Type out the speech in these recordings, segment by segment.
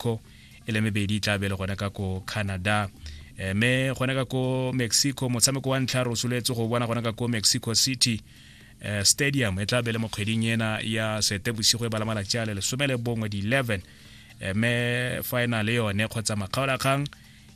mexico e le mebedi e tla be le gona ka ko canada eh, me gona ka ko mexico motshameko wa ntlha re o soletse go bona gona ka ko mexico city eh, stadium e tla be le mo kgweding ena ya setebosigo e bala malatsi a le lesome le bongwe di-11 eh, me final yone kgotsa makgaolakgang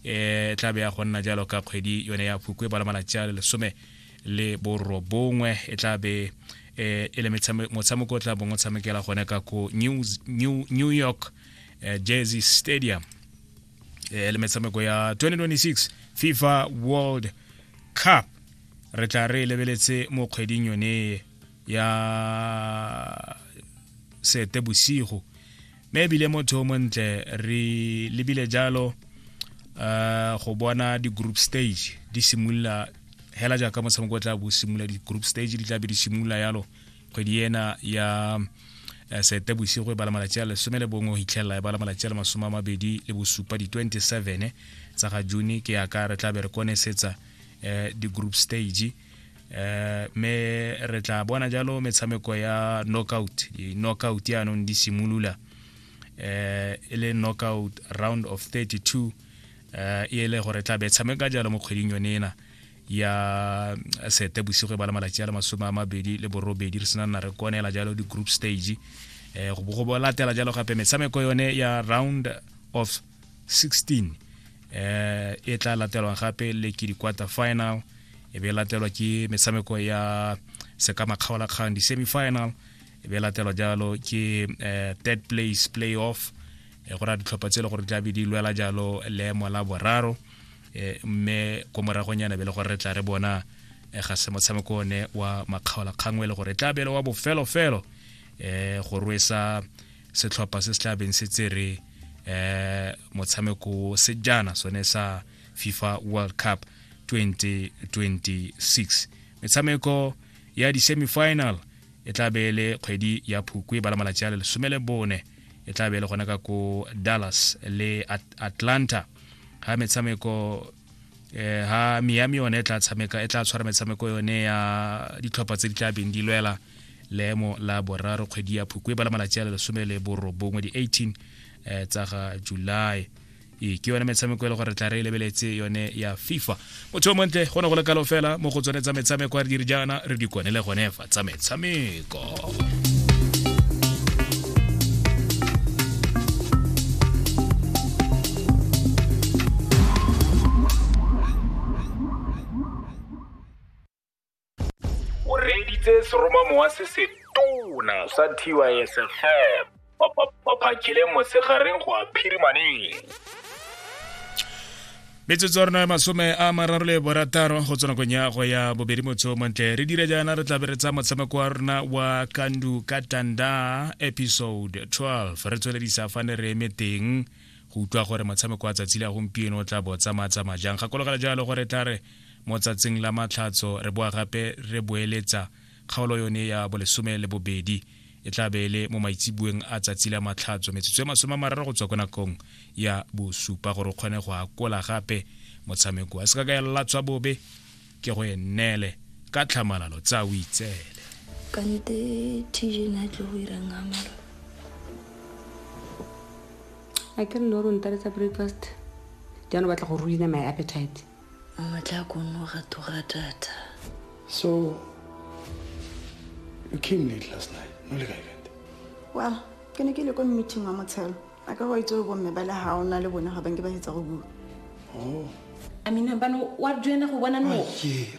e tla be ya go nna jalo ka kgwedi yone ya phukwe e bala malatsi a le lesome le borobongwe e tla be e le motshameko o tla bong o tshamekela gone ka ko new york eh, jersey stadium eh, le metshameko ya 2026 fifa world cup re tla re e lebeletse mo kgweding yone ya sete bosigo mme ebile motho o montle re lebile jalo uh, go bona di-group stage di simolola hela jaaka motshameko o tla bo simolola di-group stage di tla be di simolola yalo kgwedi ena ya eh, sete bosigo e bala malatsi a lesome le bongwe go hitlhelela e bala malatsi a le masome a mabedi le bosupa di-27 tsa ga june ke yaka re tla be re konesetsa eh, di-group stage eh, me re tla bona jalo metshameko ya knockout di-knockout yaanong di simolola eh, e le knockout round of 32 eh, e ele gore tla be tshameka jalo mo kgweding yone ena ya eh, sete bosigo e ba le malatsi a le masome a mabedi le borobedi re sena nna re konela jalo di-group stage um go bo go latela jalo gape metshameko yone ya round of 16 um eh, e tla latelwang gape le ke di-quarter final e be e latelwa ke metshameko ya sekamakgaolakgang di-semifinal e be e latelwa jalo ke um third place play off go raya ditlhopha tse e le gore di tlabe di lwela jalo leemo la boraro eh, mme ko moragonyana be le gore re tla re bona eh, ga se motshameko one wa makgaola kgangwe le gore e tla bele wa bofelofelo um go rwesa setlhopha se se tla beng se tsere um motshameko sejana sone sa fifa world cup 2026 metshameko ya di-semifinal e tla be e le kgwedi ya phukwe ba la malatsi a le lesome le bone e tla be le gona ka ko dallas le At atlanta ga metshameko eh, ha miami yone e tla tshameka e tla tshwara metshameko yone ya ditlhopha tse di tla beng di lwela leemo la boraro kgwedi ya phukwe ba la malatsi a le lesome le borobongwe di-18 eh, tsa ga july ee ke yone metshameko e le gore re tla re e lebeletse yone ya fifa motho o montle go ne go le kalo fela mo go tsone tsa metshameko re dire jaana re di kwane le gone fa tsa metshameko o reeditse seromamowa se se tona sa tysfm baphakele mosegareng go a phirimaneng metsotso ya rona ya masome a mararo le borataro go tswa nakong ya go ya bobedi motho montle re dira jaana re tlabe re tsa motshameko wa rona wa kandu ka tanda episode 12 re tsweledisa fane re eme teng go utlwa gore motshameko wa tsatsi le ya gompieno o tla bo tsamaya-tsamaya jang gakologela jalo gore tla re Mo tsatsing la Matlhatso re boa gape re boeletsa kgaolo yone ya bolesome le bobedi. E tla be e le mo maitseboeng a tsatsi la Matlhatso, metsotso e masome a mararo go tswa kwa nakong ya bosupa gore o kgone go akola gape motshameko wa sekakayalatswa bobe ke go e nneele ka tlhamalalo tsa o itseele. Kante TJ ne a tlile go ira eng Amalo? Akere ne o re o ntaletsa breakfast jaana o batla go ruina my appetite. Mmatla ko nno ga tura data. So you came late last night. No le kae kante? Well, ke ne ke le ko meeting wa motshelo. A ka go itse go bomme ba le ha o na le bone ga ba nke ba hetsa go bua. Oh. I mean, bano wa duena go bona no. Ke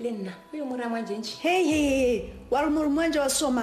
le nna o yo mo raya mwanjentšhe hei hei wa re mo re mwanjhe wa soma